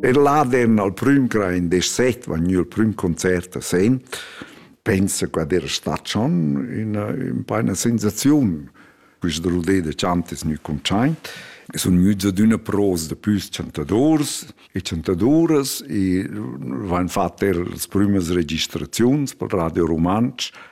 Er l'Adern al prüm cra in desset va gnü il prüm concert a Sen. Pensa che era stat schon üna, un po' una sensaziun. Quista rollé de chant es gnü contschaint. E sun gnüts ad üna pros da püs chantadors e chantadoras e vain fat er las prümas registraziuns pel Radio Rumantsch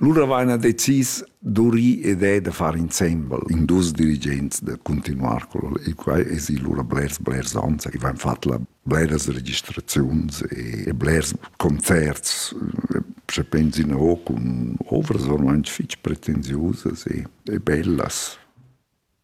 Lura vaina decis d'urir ed è da far insembel in dus dirigents da continuar quello e quai es i lura blers blers ans i vain fat la bleras registraziuns e, e blers concerts se pensi no cun ovras ormai fich pretensiusas e, e bellas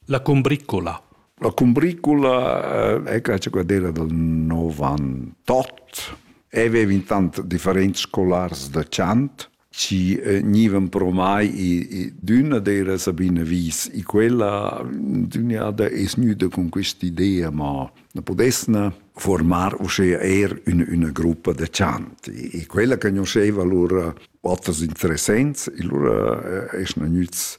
La cumbricula. La cumbricula è la ciocadera dal 98. Aveva intant differents scolars da chant ci eh, gnivan promai i d'üna d'eira Sabina Wies e quella dügnada es gnüda con quest'idea ma na pudesna formar uschea eir üna üna gruppa da chant e quella conosceva lura oters interessents e lura eh, esna gnüts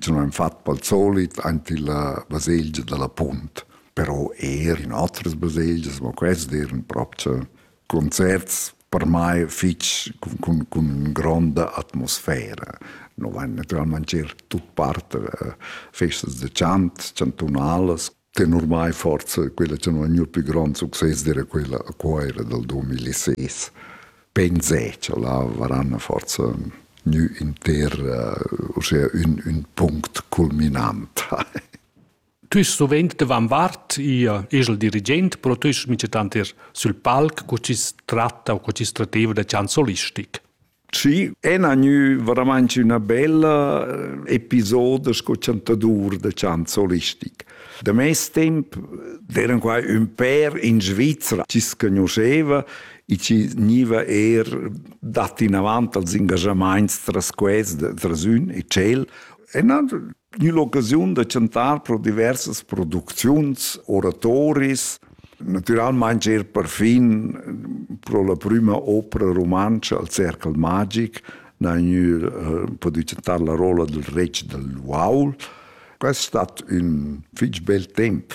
sun ün fat pel solit aint illa baselgia da la Punt, però eir in otras baselgias, ma quest d'eir ün propcha concerts per mai fich cun, cun, cun ün gronda atmosfera. No vain naturalmaing eir tut part festas da chant, chantunalas. che ormai forse quella che non è più più grande successo era quella a Coira del 2006 penso là varanno forse nu inter uh, ossia un, un punct culminant Tu ist sovent davant Wart, ihr esel dirigent, però tu ist mit tanter sul palc, co ci tratta o co ci strateva da chansolistico. Sì, è gnü veramente üna bella eh, episoda sco chantadur da chant solistic. Da mes temp d'eran qua ün pèr in Svizra chi s'conosceva e chi gniva eir dat inavant als ingajamaints tras quels, tras ün e tschel. E na, gnü l'occasiun da chantar pro diversas producziuns, oratoris, Natüralmaing eir perfin pro la prüma opera rumantscha al Cercle magic n'ha gnü eh, pudü chantar la rolla dal retg dal uaul. Quest stat ün fich bel temp.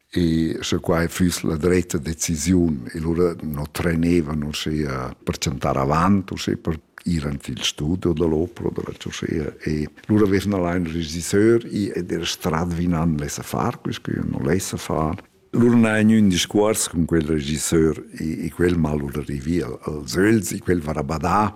E sche quai füss la dretta decisiun, e lura no trenevan uschea per chantar avant, uschea per ir ant il studio dell'opera o della Cioscea e lura vesn allein il regisseur ed er strad vinan lessa far, quisque io non lessa far. Lura n'hai gnü ün discuors cun quel regisseur e, e quel m'ha lura rivì als öls e quel varà badà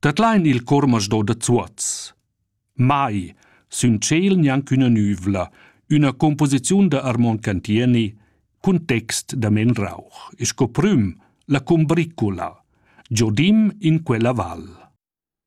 Dat lain il cormasdo da Zuoz. Mai sün tschel gnanc üna nüvla, üna composiziun da Armon Cantieni cun text da Men Rauch e sco prüm la cumbricula, Giodim in quella val.